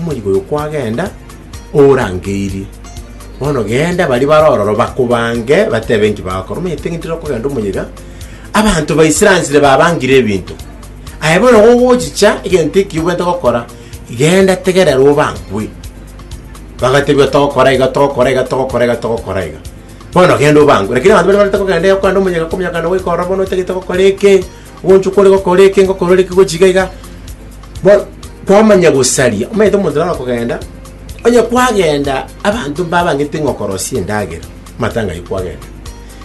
Omoika oyo kwagenda, orangeirie. Bono genda, baria bare ororo bakobange, batebe enki bagokora. Omanyete ng'iti rero okogenda omoika, abanto baisiransire babangire ebinto. Aye bono gogochicha egento eki obwenerete gokora, genda tegerera obangwe. Bagatebia togokora iga, togokora iga, togokora iga, togokora iga. Bono genda obangwe. Rakini abanto baria barente kogenda iga kogenda omoika, okominyoka na goika ororo bono otagete gokora eke, Ogochwa kore gokora eke ngokora ore eke gochika iga Bo- kwamanya gosaria omanyete omonto naro okogenda onye kwagenda abanto mbabang'ete ng'a okorosia endagera matanga aywo kwagenda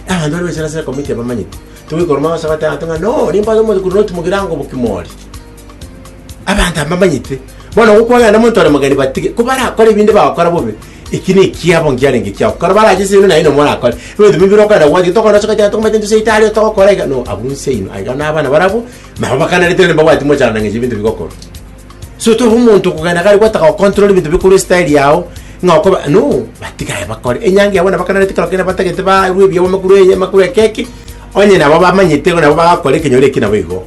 abanto bare bachire ase ekomiti abamanyete togoikora omwabo ase abateba abanto ng'a no nimbaza omonto korwa otimogere ango bokimori Abanto mbamanyete, bono gokwang'ana nomonto one mogeni batige, ko barakore ebinde bagokora bobe, eki nekiabo nkiarenge kiao. Kero barache seino naye nomo orakore, ebinto bibe bire okogenda gwaye, tokoba nosoka ching'ana tokomanya tento cia italia togokora iga, no abwo nseino aiga na abana barabwo, nabo bakanerete rende mbabwati mochando na ng'encho ebinto bigokorwa. So tobe omonto okogenda gari gwataka gocontrol ebinto bikorwa estyle yao, ng'a okoba no, batiga aye bakore. Enyangi yabo nabo bakanerete kero kende batagete barwe ebiabo makurwa eye makurwa ekeki, onye nabo bamanyete igo nabo bagakora ekenyoro eki nabo igo.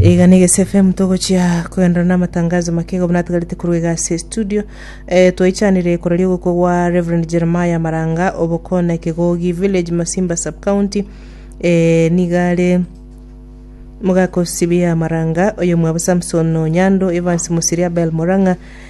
Iga na Egesu FM togochia kogenderera namatangazo make iga buna atigarete korwa iga ase estudio. Eh, twaichanire koraria ogokwa gwa Rev. Jeremiah Maranga Obokone Kegogi Village Masimba Sub County. Eh, niga are mogaka o Sibia Maranga, oyomwabo Samson Onyando, Evans Musiri, Abel Morang'a,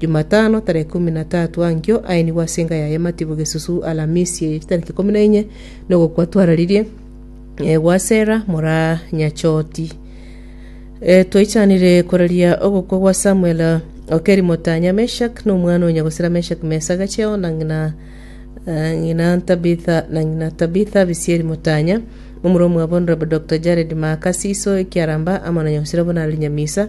Jumatano tareke ikomi na tatu ankio aenigwe ase enka yaye Matibu Gesusu Alamisi eye chitariki ikomi na inye nogokwa twararirie eh, gwa Sera mora Nyachoti. Eh, twaichanire koraria ogokwa gwa Samuel Okeri Motanya Meshak na omwana o nyagosera Meshak Mesa Gacheo na ng'ina eh, ng'ina Tabitha na ng'ina Tabitha Bisieri Motanya omura omwabo Honorable Dr. Jared Maaka Siso Ekiaramba amo na nyagosera Bonali Nyamisa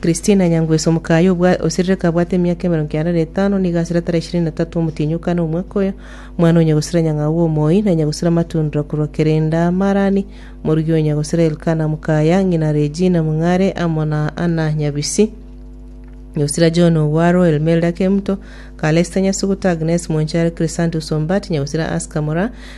Kristina Nyangweso, omokayi oserereka abwate emiaka emerongo kianda na etano, nigo asire tara ishirini na tatu omotienyi o kane omwaka oyo, mwana onya gosira nyang'au bw'omoyio, na onya gosira amatundra korwa kerenda Marani, morugi onya gosira Elkana mokaya, ng'ina Regina Mong'are, amo na Anna Nyabisi, nyagosira John Ogwaro, Elmelda Kemto, Calesta Nyasuguta, Agnes Mwanchare, Chrysantus Ombat, nyagosira Aska Moraa,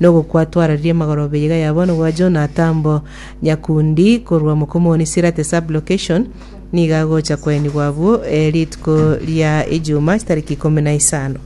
Nogokwatwararia magoro beyega ya bono bwa Jonathan bo nyakundi korwa Mokomoni Sirate Sub-Location nigo agocha koenigwa abwo rituko ria Ejuma chitariki ikomi na isano.